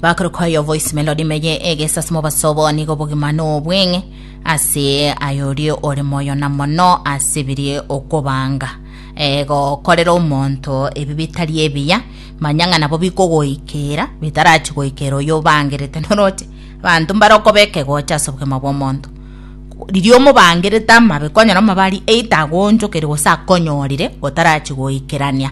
bakore kwa yo voice melody meye egesasi mobasobo nigo obogima nobweng'e ase ayorie ore moyo na mono ase birie okobanga eh, gokorera omonto ebi bitari ebiya manya ng'a nabo bikogoikera bitarachi goikera oyo obangerete noroche abanto mbarokoba ekegocha ase obogima bw'omonto riria omobangerete amabe konyora omabari eita agonchokeri gose akonyorire gotarachi goikerania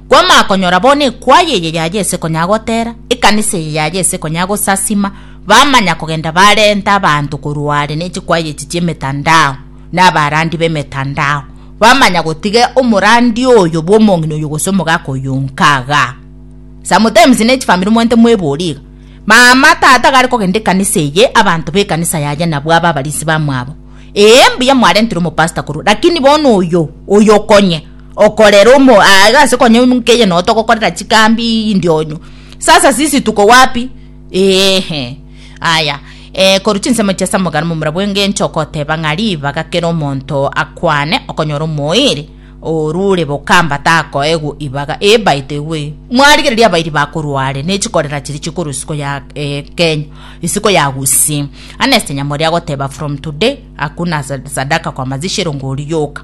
Kwamanya konyora bono ekwayi eye yaye ase konya gotera, ekanisa eye yaye ase konya gosasima, bamanya kogenda barenta abanto korwa are ne chikwayi echi chi'emetandao, na abarandi b'emetandao, bamanya gotiga omorandi oyo bw'omong'ina oyo gose omogaka oyo onka igaa. Sometimes ne chifamiri mwenyete mwebori iga, mama, tata iga are kogenda ekanisa eye, abanto b'ekanisa yaye nabwo aba abarisi bamwabo. Ee mbuya mwarentire omopastor korwa, lakini bono oyo, oyo okonye. okorera omo aiga ase konya omoika eye no togokorera chikambi ndionyo sasa sisi tuko wapi eeh aya eh, korwa chinsemo chia samogana momura bw'engencho okoteba ng'a ribaga kera omonto akwane okonyora omoeeri orure bokamba takoegwa ibaga ee by the way mwarigereria abairi bakorwa are ne chikorera chiria chikorwa isiko ya eh, kenya isiko ya gusii aneste nyamori agoteba from today hakuna sa- sadaka kwa mazishi erongo oriyoka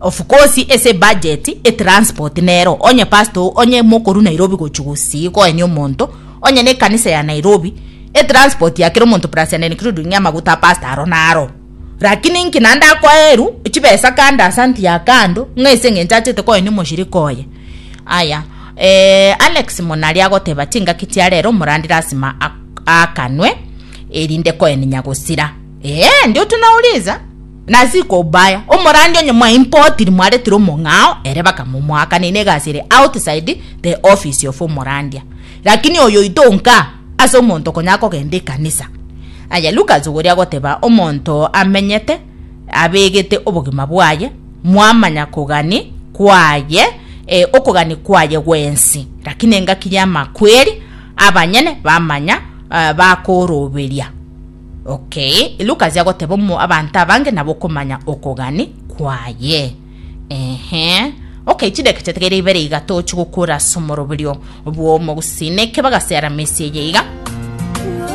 Of course ase budget etransport nero onye pastor onye mokoru Nairobi gochia gosii koenia omonto onye ne ekanisa ya Nairobi etransport ya kera omonto plus and including amaguta a pastor aro naro lakini nki naende akoeru chibesa kando ase anti ya kando ng'a ase eng'encho achete koenia omoshirika oye aya eeh Alex monari agoteba chingaki chia rero omorandi lasima akanwe erinde koeninya gosira eeh ndio tunauliza. Na Zikobaya, omorandia onye mwa impotiri mwaretire omong'ao ere bakamomoakaneina egasi ere outside the office of omorandia. Lakini oyoito nka ase omonto konya kogenda ekanisa. Aye Lucas ogoria goteba omonto amenyete abegete obogima bwaye mwamanya kogani kwaye e, okogani kwaye gwensi, lakini engaki y'amakweri abanyene bamanya e, bakoroberia. Okay, Luke achia goteba omo abanto abange nabo okomanya okogani kwaye. Ehe. Okay, chideka chiategeire ibere iga tochi gokura asomoroberio bw'omogusii. Neke bagaseara mesi eye iga.